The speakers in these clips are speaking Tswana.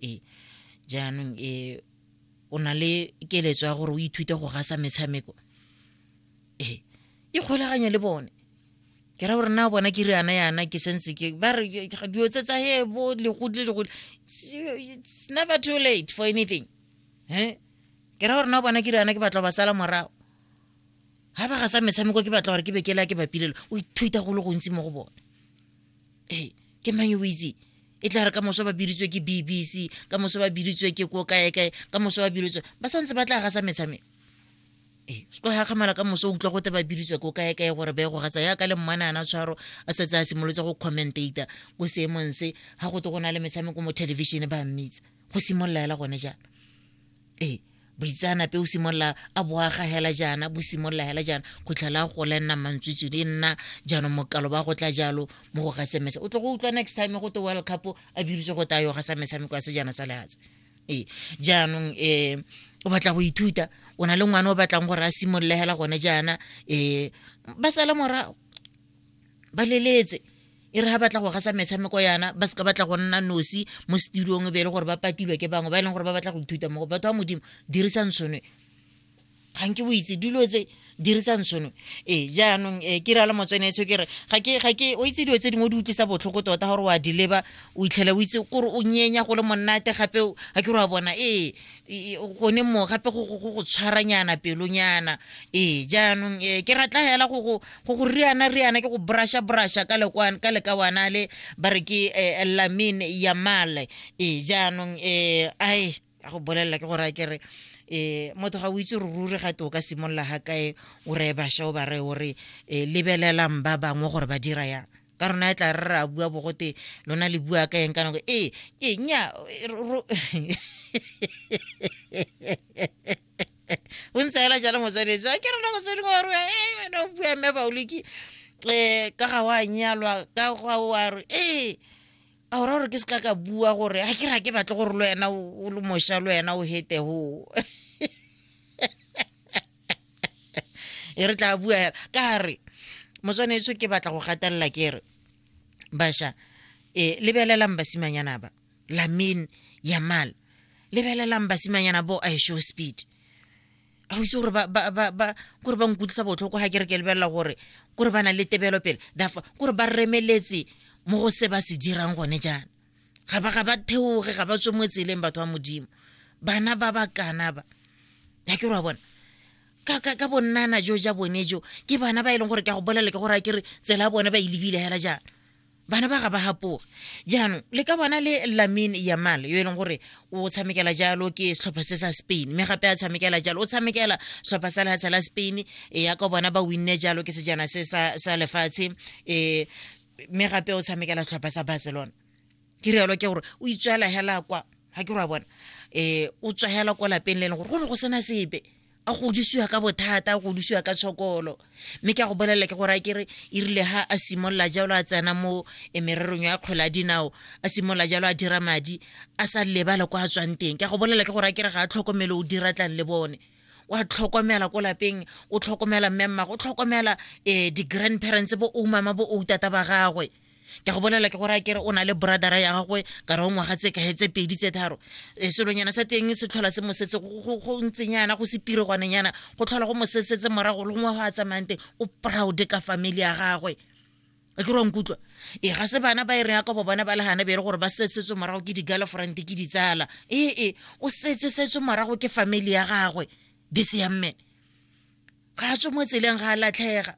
Ee. Jaanong e o na le keletso ya gore o ithute go gasa metshameko. Ee. E kgolaganye le bone. Ke ra gore na bona ke riana yana ke sentse ke ba re dilo tse tsa he bo legodi le legodi. It's never too late for anything. Eh? Ke ra gore na bona ke riana ke batla ba sala morago. Ha ba gasa metshameko ke batla gore ke be ke la ke bapilelo. O ithuta go le gontsi mo go bone. hey, ke mang yo o itseng e tla re ka moso ba biritswe ke bbc ka moso ba biritswe ke ko kae kae ka moso ba biritswe ba santse ba tla gasa metshameko ee se ga kgamala ka moso o utlwa gote ba biritswe ko kae kae gore ba ye go gasa yaka le mmane ana tshwaro a setse a simolotse go commentata ko seemong se ga gote go na le metshameko mo television ba mmitsa go simolola ela gone jaana ee boitseanape o simolola a boaga hela jaana bo simolola hela jaana go tlhela go le nna mantswitswedi e nna jaanong mokalo ba go tla jalo mo go gasemesa o tlo go utlwa next time go te world cup a biditse go tayo ga sa metshameko ya sejana sa lehatshe ee jaanong um o batla go ithuta o na le ngwana o batlang gore a simolole hela gone jaana um ba sala morago ba leletse e re ga batla go gasa metshameko yana ba seka batla go nna nosi mo studiong e be e le gore ba patilwe ke bangwe ba e leng gore ba batla go ithuta mo go batho ba modimo dirisang tshonwe ga nke o itse dilo tse dirisang tshonwe ee jaanong e ke rala motsweneetsho ke re ga ke ga ke o itse dilo tse dingwe di utlwisa botlhoko tota gore wa di leba o itlhela o itse kore o nyenya go le monate gape ga ke re wa bona ee gone mo gape go go tshwaranyana pelonyana ee jaanong um ke ratla fela go go riana riana ke go brasha brasha ka lekawana le ba re ke eh, lamin yamale ee jaanong um ai a go bolelela ke gore a ke re eh motho ga o itse re ruri ga te o ka simolola ga kae o reye basha o ba reye o re um lebelelang ba bangwe gore ba dira yang ka rona e tla re ra bua bogote lona le bua ka eng ka nako ee ee nya o ntse ela jalo motswaletse a ke rona motswadi wa rona ee wena o bua mme baoloki um ka ga wa nyalwa ka ga wa re ee a ora gore ke se ka ka bua gore a ke ra ke batle gore le wena o le moša le wena o hetego e re tla bua hela ka re motswaneso ke batla go gatelela ke re basha e lebelelang basimanyana ba lamin yamal lebelelang basimanyana bo a show speed ga o itse gore kore ba nkutlwisa botlhoko ga ke re ke lebelela gore kore ba na le tebelo pele therefore kore ba remeletse mo go se ba se dirang gone jaana ga ba ga ba theoge ga ba tswe mo tseleng batho ba modimo bana ba ba kana ba ya ke ra bona ka ka ka bonnana jo ja bone jo ke bana ba e leng gore ke a go bolele ke gore a kere tsela bone ba e lebile hela jaana bana ba ga ba gapoge jaanong le ka bona le lamin yamal yo e leng gore o tshamekela jalo ke setlhopha se sa spain mme gape a tshamekela jalo o tshamekela setlhopha sa lehatsha la spain e ya ka bona ba winne jalo ke sejana se sa lefatshe um mme gape o tshamekela setlhopha sa barcelona ke rialo ke gore o itswela hela kwa ga ke re wa bona um o tswa hela kwa lapeng le e leng gore go ne go sena sepe a godisiwa ka bothata a godisiwa ka tshokolo mme ke a go bolelela ke gore a kere e rile ha a simolola jalo a tsena mo eh, mererong ya kgwele a dinao a simolola jalo a dira madi a sa lebale kwa a tswang teng ke a go bolelela ke gore a kere ga a tlhokomele o dira tlang le bone wa tlhokomela ko lapeng o tlhokomela mme mmago o tlhokomela um di-grandparents bo o mama bo o tata ba gagwe ke go bolela ke gore a kere o na le bradara ya gagwe ka re o ngwaga tse kae tse pedi tse tharo e selonyana sa teng se tlhola se mosetse go ntsenyana go se piregwanenyana go tlhola go mosesetse morago le gongwe go a tsamayang teng o proud ka family ya gagwe a ke rwankutlwa e ga se bana ba e reng yakobo bona ba le gana bere gore ba setsetswe morago ke di-girlfriend ke ditsala ee e, o setsesetswe morago ke family ya gagwe this young man ga a tswe mo tseleng ga a latlhega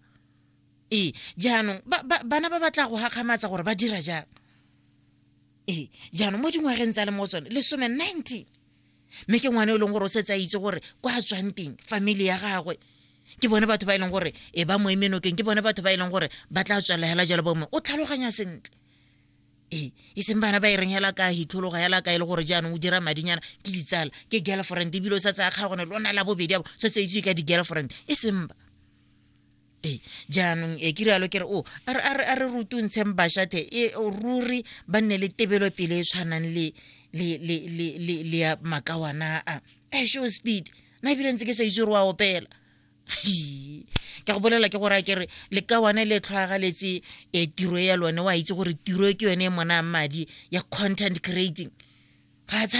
ee jaanong bana ba batla go gakgamatsa gore ba dira jang ee jaanong mo dingwageng tsa le mo tsone lesome nineteen mme ke ngwana e leng gore o setse a itse gore kwa a tswang teng family ya gagwe ke bone batho ba e leng gore e ba mo emenokeng ke bone batho ba e leng gore ba tla tswelela hela jalo bongwe o tlhaloganya sentle ee e seng bana ba e reng hela ka hitlhologa hela ka e le gore jaanong o dira madinyana ke ditsala ke girlfriend ebile o sa tsaya kgagone lona la bobedi abo sa tse itse ka di-girlfriend e seng ba ee jaanong e ke rialo ke re o a re rutungtsheng bashathe e ruri ba nne le tebelopele e tshwanang le le le le le le ya makawana a e show speed na ebile ntse ke sa itse gore wa opela ke go bolela ke gore a kere le ka one le tlhwagaletse e tiro ya lone wa itse gore tiro ke yone e monang madi ya content creating ga